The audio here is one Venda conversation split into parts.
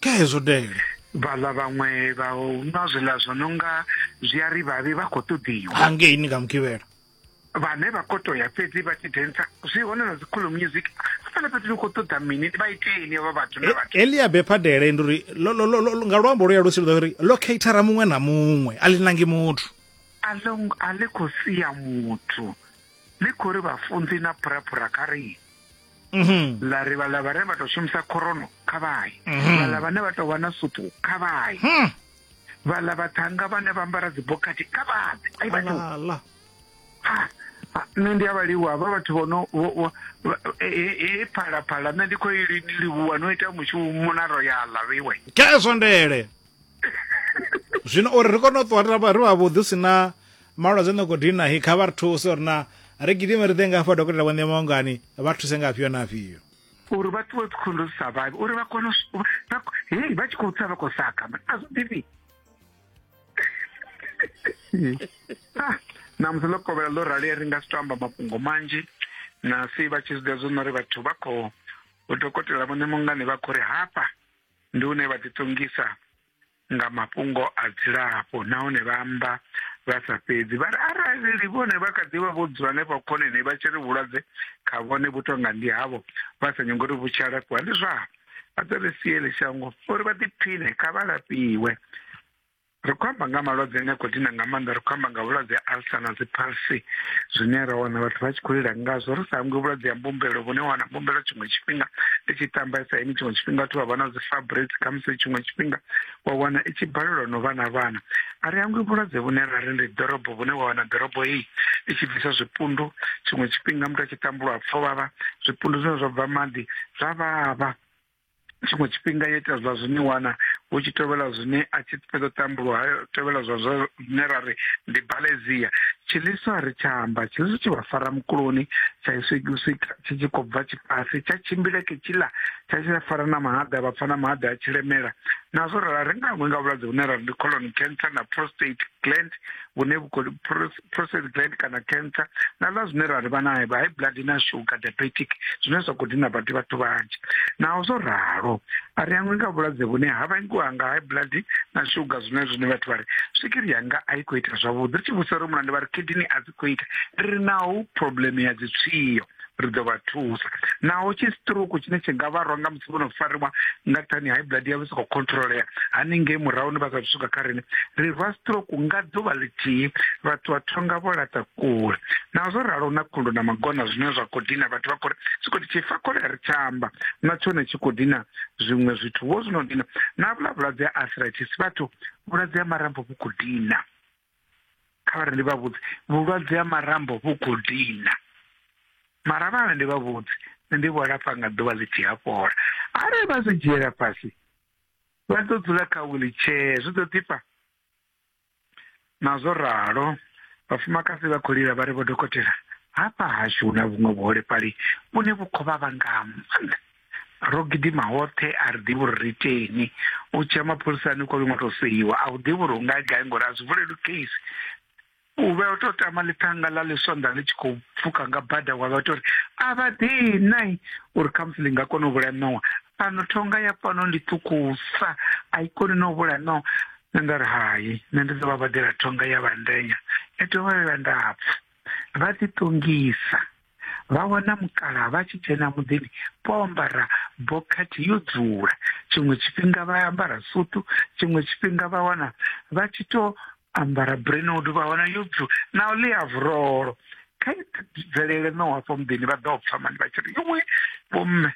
kha hezwo dele vhaḽa vhaṅwe vha nwa zwiḽa zwo no nga zwi a ri vhavhi vha khou ṱoḓiwa hangei ni nga mugivhela vhane vha khou to ya fhedzi vha tshi densa zwi hone na dzikhulu music hafhaḽa fhethu ni khou ṱoḓa mini vha iteni avha vhathu na vhathu e, elia bephadele ndi uri nga luambo lu ya lusi luḓa uri locatora muṅwe na muṅwe a ḽi nangi muthu a ḽi khou sia muthu ḽi khou ri vhafunzi na phuraphura kha rii Mhm. ḽa ri vhaḽa vhane vha tou shumisa khorono kha vhaye mhm. vhaḽa vhane vha tou vha na supu kha vhaye hmm. vhaḽa vhathanga vhane vha ambara dzibokhathi kha vhaḓe ai vhathu nṋe ndi a vha livhuwa vha vhathu vho no e, e, e phalaphala nṋe ndi khou i livhuwa no ita mushumo na royala vhiwe ke eswandele zwino uri ri kone u ṱuwa ri vha vhuḓi si na malwadze no khou dina hi kha vha ri thuse uri na ri gidime ri ḓe nga hafha dokotela vho ṋema ungani vha thuse nga afhio na afhio uri vha ṱuwe dzikhondo zwi sa vhavhi uri vha kone hei vha tshi khou tsa vha khou saka a zwo ḓivhi ah, namusi ḽo kovhela ḽo rali ri nga si to amba mafhungo manzhi na si vha tshi zwiḓa zwo no ri vhathu vha khou dokotela vhone mungani vha khou ri hafha ndi une vha ḓiṱongisa nga mafhungo a dzilafho nahone vha amba vha sa fhedzi vha ri arali vhone vha kha ḓivha vho dzula hanefha khoneni vha tshi ri vhulwadze kha vhone vhu tonga ndi havho vha sa nyongo uri vhu tshi alafhiwa ndi zwavho vha ḓo ri siele shango uri vha ḓiphiṋe kha vha lafhiwe ri khou amba nga malwadze ane a khou dina nga maanḓa ri khou amba nga vhulwadze ha alsa na dziphalsi zwine ra wana vhathu vha tshi khou lila ngazwo ri sa hangwi vhulwadze ha mbumbelo vhune wana mbumbelo tshiṅwe tshifhinga i tshi tambesa ini tshiṅwe tshifhinga vhathu vha vha na dzi fabric khamusi tshiṅwe tshifhinga wa wana i tshi balelwa no vha na vhana a ri hangwi vhulwadze vhune ra ri ndi ḓorobo vhune wa wana ḓorobo heyi i tshi bvisa zwipundu tshiṅwe tshifhinga muthu a tshi tambulwa pfho vhavha zwipundu zwine zwa bva maḓi zwa vhavha tshiṅwe tshifhinga yo ita zwa zwine wana hu tshi tevhela zwine a tshi fhedza u tambulwa ha tevhela zwa zwine ra ri ndi balezia tshiḽiswa ri tsha amba tshiḽiswa tshi vha fara mukuloni tsha iswikiswika tshi tshi khou bva tshifhasi tsha tshimbila ke tshiḽa tsha tshi fara na mahaḓa vha pfa na mahaḓa a tshi lemela nazwo ra ri nga nga vhulwadze vhune ra ndi colon cancer na prostate gland vhune prostate gland kana cancer na ḽa zwine ra ri vha na high blood na sugar diabetic zwine zwa khou dina badi vhathu vhanzhi naho zwo ralo a ri angwi nga vhulwadze vhune ha vhangiwa nga high blood na sugar zwine zwine vhathu vha ri swigiri yanga a i khou ita zwavhuḓi ri tshi vhusa ri mulande vha ri kidini a dzi khou ita ri ri naho problem ya dzitswiyo ri ḓo vha thusa naho tshi stroke tshine tshi nga vharwa nga musi vho no fariwa nga thani high blood yavho sokou controlea haningei murahu ni vha sa swika kha rine ri rwa stroke nga ḓuvha ḽithihi vhathu vha thonga vho laṱa kule naho zwo ralo na khundu na magona zwine zwa khou dina vhathu vha khori zwi khou tshi fa kole ri tshamba na tshone tshi khou dina zwiṅwe zwithu vho zwino dina na vhula vhulwadze ha arthritis vhathu vhulwadze ha marambo vhu khou dina kha ri ndi vha vhudze vhulwadze ha marambo vhu khou dina mara vhana ndi vha vhudze ndi vho lafha nga ḓuvha ḽi tshi hafhola arali vha zwi dzhiela fhasi vha ḓo dzula kha wheelchair zwi ḓo ḓifha nazwo ralo vhafumakadzi vha khou lila vha ri vho dokotela hafha hashu hu na vhuṅwe vhuholefhali vhune vhu khou vha vha nga maanḓa ro gidima hoṱhe a ri ḓivhi uri ri iteni u tshia mapholisani kwa vhiṅwe to seiwa a u ḓivhi uri u nga gai ngori a zwi vuleli case u vhe o tou tama ḽithanga ḽa ḽisonḓa ḽi tshi khou pfuka nga bada wa vha tou ri a vha ḓei nai uri khamusi ḽi nga kona u vhulaya ṋowa fhano thonga ya fhano ndi ṱhukhusa a i koni na u vhulaya ṋowa nṋe nda ri hai nṋe ndi ḓo vha badela thonga ya vhandenya ya dovha ya vha ndapfu vha ḓiṱongisa vha wana mukala vha tshi dzhena muḓini vho ambara bokhathi yo dzula tshiṅwe tshifhinga vha ambara sutu tshiṅwe tshifhinga vha wana vha tshi to ambara brenoud vha wana yo dzula na u ḽia vurolo kha bvelele no hafho muḓini vha ḓo pfa mani vha tshi ri iwe vhomme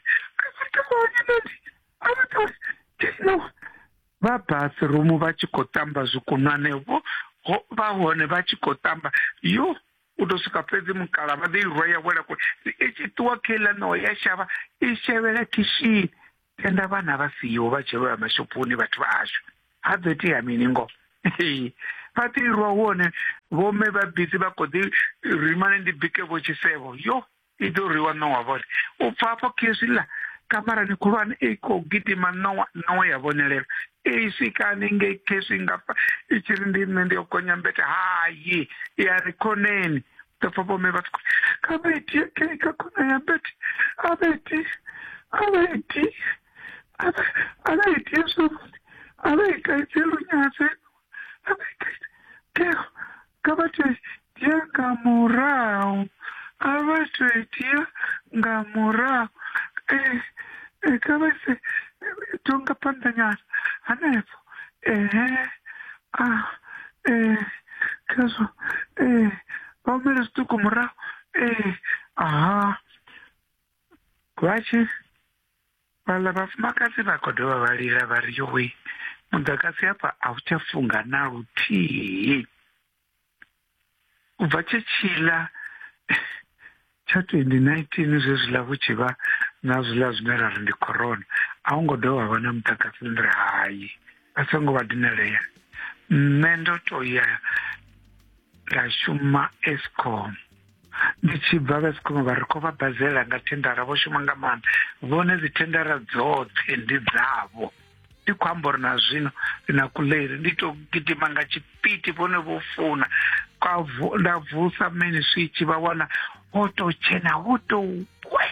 vha bathroom vha tshi khou tamba zwikunwane vho vha hone vha tshi khou tamba yo u ḓo swika fhedzi mukala vha ḓo i rwa ya wela kule i tshi ṱuwa kha iḽa ṋoho ya shavha i shavhela khishini tenda vhana vha siho vha tshi lovha mashophoni vhathu vha ashu ha ḓo itea mini ngo vha ḓo i rwa hone vhomme vha bizi vha kho ḓi rimane ndi bike vho tshisevho yo I ḓo rwiwa Nowa vhone. U bva afho khezwi ḽa kamarani khulwane i khou gidima Nowa Nowa ya vhonelela. I swikani nge khezwi nga pfa i tshi ri ndi nṋe ndi yo gonya mbete hayi ya ri khoneni ḓo pfa vhome vha sikho kha vha itie khe kha khona ya mbete a vha itie a vha itie a vha itie zwavhuḓi a vha ita itie lunyase Teo, kha vha to dzhia nga murahu a vha to dzhia nga murahu Eh, eh, kha vha se to nga phanḓa nyana hanefho ehe a eh, khezwo eh, vha humele zwiṱuku murahu eh, aha vha tshi Vhaḽa vhafumakadzi vha khou dovha vha lila vha ri yowe muḓagasi hafha a u tsha funga na luthihi u bva tshe tshiḽa tsha 2019 zwezwiḽa vhu tshi vha na zwiḽa zwine ra ri ndi corona a hu ngo dovha vha na muḓagasi ndi ri hai a so ngo vha dinalea nṋe ndo to ya nda shuma escom ndi tshi bva vha sikuma vha ri khou vha bazela nga thendara vho shuma nga maanḓa vhone dzi thendara dzoṱhe ndi dzavho ndi khou amba uri na zwino na kuleri ndi to gidima nga tshipiti vhone vho funa nda vusa meni switshi vha wana ho to tshena ho to we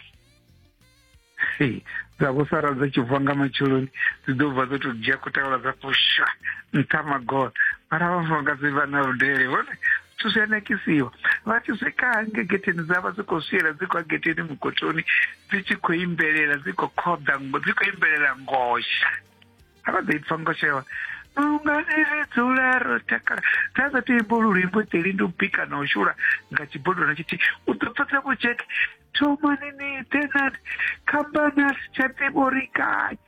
dza vho sara dza tshi bva nga matsheloni dzi ḓo bva dzo to dzhia kutawula dza pusha nṱha magola mara vhafumakadzi vha na vhudele vhone zwithu zwi a nakisiwa vha tshi swika hange getheni dza vha dzi khou swiela dzi khou getheni mugotoni dzi tshi khou imbelela dzi khou khoḓa dzi khou imbelela ngosha hava ḓo i pfa ngo shewa lungani ri dzula ro takala ra sa tea imbo lulimbo dzeli ndi u bika na u shula nga tshibodwana tshithihi u ḓo pfesa vho jack thomani ni ḓe nani khamphani a si tsha ḓivha uri gai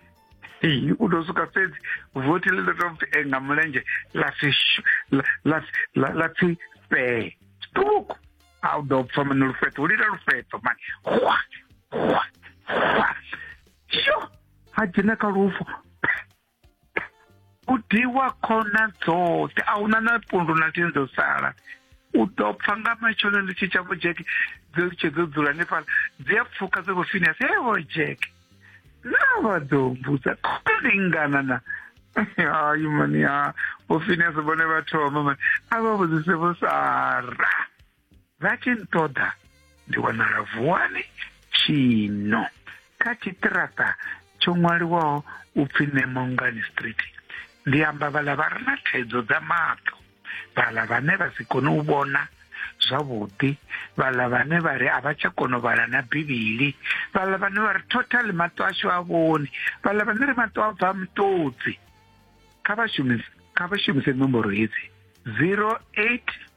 Ee, u ḓo swika fhedzi vothi ḽi ḓo tou pfi eh, nga mulenzhe ḽa pfi shu- ḽa- ḽa pfi- ḽa- ḽa pfi fee ṱuku a u ḓo pfa mani lufheṱo u lila lufheṱo mani hwa hwa hwa yo ha dzhena kha lufu u diwa khona dzoṱhe a huna na pundu na tini dzo sala u ḓo pfa nga matshelo ndi tshi tsha vho jeke dzo litshe dzo dzula hanefhala dzi a pfuka dza vho finias he vho jeke na vha ḓo mbudza khona lingana na hayi mani ha vho finias vhone vha thoma mani a vha vhudzise vho sara vha tshi nṱoḓa ndi wanala vuwani tshino kha tshiṱiraṱa tsho ṅwaliwaho u pfi nemongani street ndi amba vhala vha re na thaidzo dza maṱo vhala vhane vha si kone u vhona zwavhuḓi vhala vhane vha ri a vha tsha kona u vhala na bivhili vhala vhane vha ri total maṱo ashu a vhoni vhala vhane ri maṱo a bva mutodzi kha vha shumise kha vha shumise nomboro hedzi 08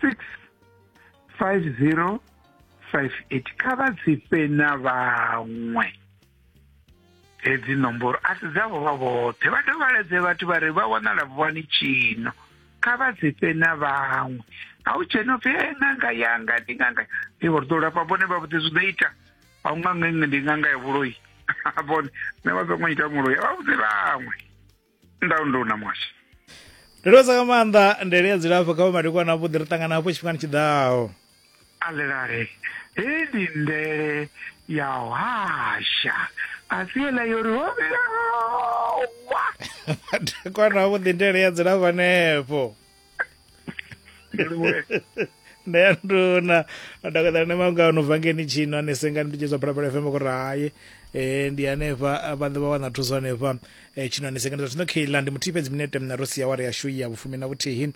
650 58 kha vha dzi fhe na vhaṅwe hedzi nomboro a si dzavho vha vhoṱhe vha dovhaledze vhathu vha ri vha wanala vhuwani tshino kha vha dzi fhe na vhaṅwe a u dzhena upfi e ṅanga yanga ndi ṅanga ndi vho ri ḓo lafha vhone vha vhudze zwi ḓo ita a u ṅanga iṅwe ndi ṅanga ya vhuloi vhone nṋe vha songo ita muloi a vha vhudze vhaṅwe ndau ndo na mwasha ndinosa ka maanḓa ndele ya dzilafho kha vhamadekwana avhuḓi ri ṱangana hafho tshifhingani tshiḓaho alelale hei ndi ndele ya hasha a si yeḽa yo ri hovhelawa madekwana avhuḓi ndele ya dzilafho hanefho ndeyanduna adakadala nemangano vhangeni tshino anesengani nditshedzwa phalaphala fm kuri hayi eh ndi hanefha vhanḓe vha wana thuso hanefha eh tshino anesengani zwa zwino kheila ndi muthihi fhedzi minete mna ro sia wari yashu ya vhufumi na vhuthihi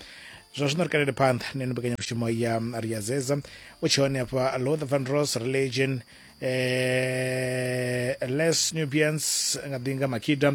zwa zwino ri kalele phanḓa neno mbekanyamushumo ya ri ya zeza u tshi hone hafha lother van ros religion eh les nubians nga ḓinga makida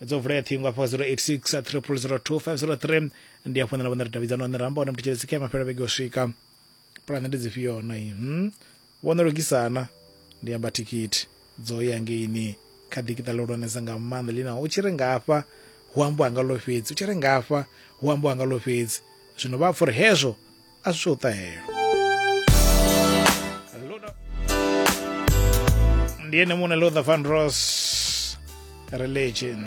dzo vulea ṱhingo afho 086 3002 ndi afho nṋe na vhone ri davhidzana hone ramba hone mthetshelesi kha mafhelo vhege u swika pulane ndi dzifhio na i hmm? vho no lugisana ndi amba thikhithi dzo ya ngeini kha ḓikiṱa ḽihulwanesa nga maanḓa lina u tshi ri ngafha hu ambiwa nga ḽo fhedzi u tshi ri ngafha hu ambiwa nga ḽo fhedzi zwino vha pfa uri hezwo a si tsho ṱahelo ndi ene muṋe lother van ros religion